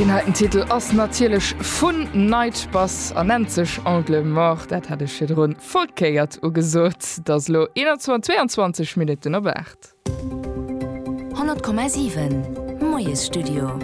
Deen heiten Titel ass natierlech vun Night Bus an nennt sech Angle Mort. Dat hat ech virdrun verkéiert ugesot. Et ass elo 21:22 Minutten op 8. 100,7 Moiesstudio.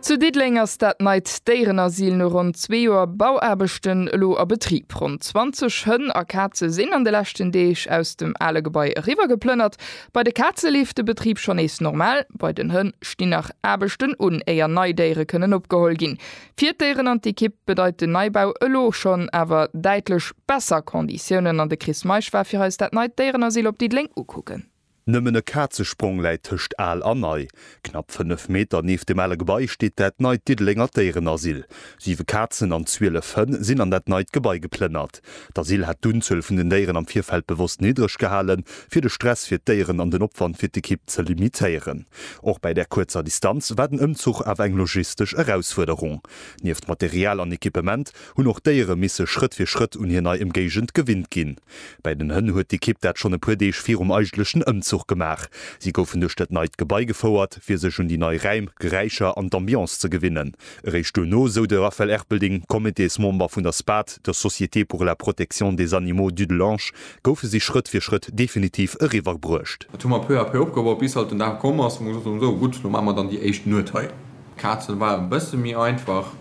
Zu Diddeleng ass dat neit Déierenasyl no ronn zwee Joer Bauaarbechten elo a Betrib. Ronn 20 Hënn a Kaze sinn an de leschten Deeg aus dem ale Gebai eriwwer geplënnert. Bei de Kaze leeft de Betrib schonn nees normal. Bei den Hënn stinn nach Aarbechten un, éier nei Déiere kënnen opgeholl ginn. Fir d'Déieren an d'Ekipp bedeit den Neibau elo schonn awer däitlech besser Conditiounen an de Chris Meisch war fir eis dat neit Déierenasyl op Diddeleng ukucken. Nëmmen e Kazesprong läit tëscht al a nei. Knapp 5 Meter nieft dem ale Gebai steet dat neit Diddelenger Déierenasyl. Siwe Kazen an 12 Hënn sinn an dat neit Gebai geplënnert. D'Asyl hat d'Unzuel vun den Déieren am Virfeld bewosst niddreg gehalen, fir de Stress fir d'Déieren an den Opwand fir d'Ekipp ze limitéieren. Och bei där kuerzer Distanz war den Ëmzuch awer eng logistesch Erausfuerderung. Nieft Material an Equipement hunn och d'Déiere misse Schrëtt fir Schrëtt un hir nei Ëmgéigend gewinnt ginn. Bei den Hënn huet d'Ekipp dat schonn e puer Deeg virum eigentlechen Ëmzuch gemaach. Si goufen duerch dat neit Gebai gefouert, fir sech un déi nei Räim, Geräischer an d'Ambiance ze gewinnen. Eréischt duerno, sou de Raphaël Erpelding, Cométésmember vun der SPAD, der Société pour la protection des animaux Dudelange, goufe si Schrëtt fir Schrëtt definitiv eriwwer bruecht. Dat hu mer peu à peu opgebaut, bis halt den Dag komm ass, wou mer gesot hunn, esou, gutt, elo maache mer dann déi éischt Nuet hei. Kazen war e bësse méi einfach.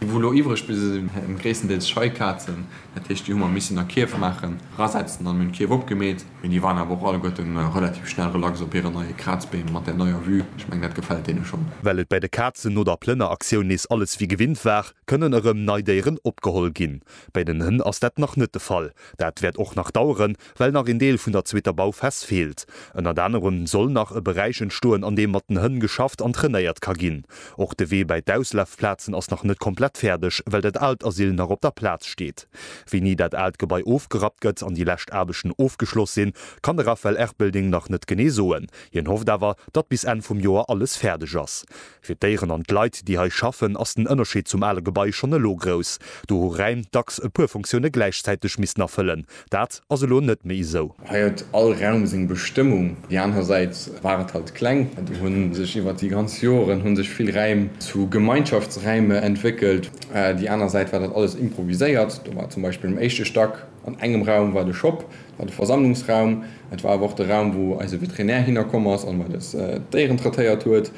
Déi wou lo iwwreg bliwwe sinn waren gréisstendeels Scheikazen, dat heescht déi hu mer missen a Kierf maachen, rasetzen an hunn d'Kierf opgemeet. Mee déi waren awer och alleguerte relativ schnell relax op hire neie Krazbeem mat där neier Vue, ech mengen dat gefält deene schonn. Well et bei de Kazen no der Plënneraktioun nees alles wéi gewinnt war, kënnen erëm nei Déieren opgeholl ginn. Bei den Hënn ass dat nach net de Fall, dat wäert och nach daueren, well nach een Deel vun der zweeter Bauphas feelt. Ënnert anerem soll nach e Beräich entstoen, an deem mat den Hënn geschafft an trainéiert ka ginn. Och de Wee bäi d'Auslafplazen ass nach net komplett fäerdeg, well dat aalt Asyl nach op der Plaz steet. Wéini dat aalt Gebai ofgerappt gëtt an déi lescht Aarbechten ofgeschloss sinn, kann de Raphaël Erpelding nach net genee soen. Hien hofft awer, datt bis Enn vum Joer alles fäerdeg ass. Fir d'Déieren an d'Leit, déi hei schaffen, ass den Ënnerscheed zum ale Gebai schonn elo grouss. Do hu Räim dacks e puer Funktioune gläichzäiteg missen erfëllen. Dat ass elo net méi esou. Hei huet all Raum seng Bestëmmung. Déi aner Säit war et halt kleng. Do hu sech iwwert déi ganz Joren hu sech vill Räim zu Gemeinschaftsräime entwéckelt. Déi aner Säit war dat alles improviséiert. Do war zum Beispill um éischte Stack an engem Raum war de Shop. War de Versammlungsraum. Et war awer och de Raum, wou eise Veterinär hinnerkomm ass an mat eis d'Déieren traitéiert huet.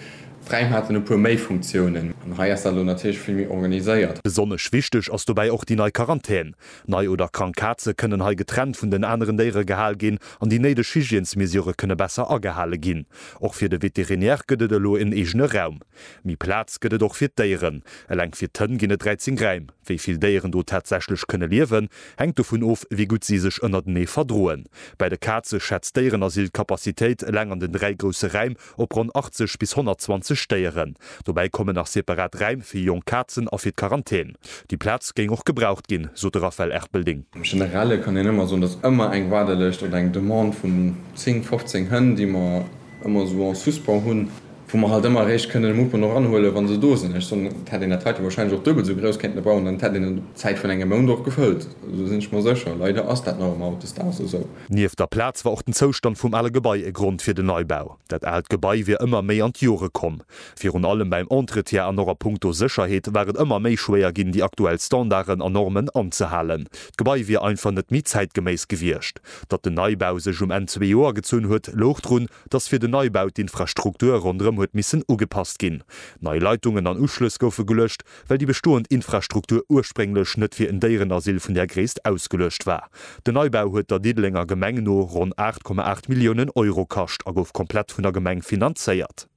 D'Räim haten e puer méi Funktiounen. An hei ass dat elo natierlech vill méi organiséiert. Besonnesch wichteg ass dobäi och déi nei Quarantän. Nei oder krank Kaze kënnen hei getrennt vun den aneren Déiere gehal ginn an déi néideg Hygiènesmesurë kënne besser agehale ginn. Och fir de Veterinär gëtt et elo en eegene Raum. Méi Plaz gëtt et och fir d'Déieren. Eleng fir d'Hënn ginn et 13 Räim. Wéi vill Déieren do tatsächlech kënne liewen, hänkt dovun of, wéi gutt si sech ënnertenee verdroen. Bei de Kaze schätzt d'Déierenasyl d'Capacitéit eleng an den dräi grousse Räim op ronn 80 bis 120 Déieren. Dobäi kommen nach separat Räim fir jonk Kazen a fir d'Quarantän. Déi Plaz géing och gebraucht ginn, sot de Raphaël Erpelding. Am Generelle kann een ëmmer soen, datt ëmmer eng Waardelëscht oder eng Demande vun 10, 15 Hënn, déi mer ëmmer esou en suspens hunn, wou mer halt ëmmer eréischt kënnen e Mouvement och anhuelen, wa se do sinn. Ech soen, et hätt een dat heite wahrscheinlech och duebel esou grouss kéinten bauen, dann hätt een et op Zäit vun engem Mount och gefëllt. Esou sinn ech mer sécher. Leider ass dat nach ëmmer hautdesdaags esou. Nieft der Plaz war och den Zoustand vum ale Gebai e Grond fir den Neibau. Dat aalt Gebai wier ëmmer méi an d'Jore komm. Virun allem beim Entretien an och a punkto Sécherheet war et ëmmer méi schwéier ginn, déi aktuell Standarden a Normen anzehalen. D'Gebai wier einfach net méi zäitgeméiss gewiescht. Datt den Neibau sech um Enn zwee Joer gezunn huet, louch drun, dass fir den Neibau d'Infrastruktur ronderëm huet missen ugepasst ginn. Nei Leitungen an Uschlëss goufe geluecht, well déi bestoend Infrastruktur ursprénglech net fir en Déierenasyl vun där Gréisst ausgeluecht war. Den Neibau huet der Diddelenger Gemeng no ronn 8,8 Milliounen Euro kascht a gouf komplett vun der Gemeng finanzéiert.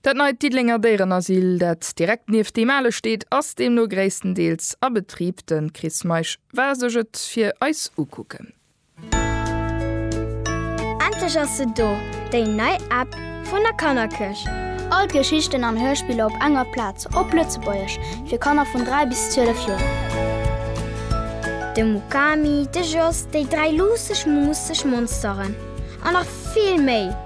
Dat neit Diddelenger Déierenasyl, dat direkt nieft deem ale steet, ass deemno gréisstendeels a Betrib. De Chris Meisch war sech et fir eis ukucken. Endlech ass se do, déi nei App vun der Kannerkirch! All d'Geschichten an Hörspiller op enger Plaz, op Lëtzebuergesch, fir Kanner vun 3 bis 12 Joer. De Mukami, de Jos, déi dräi luusseg, muusseg Monsteren an nach vill méi!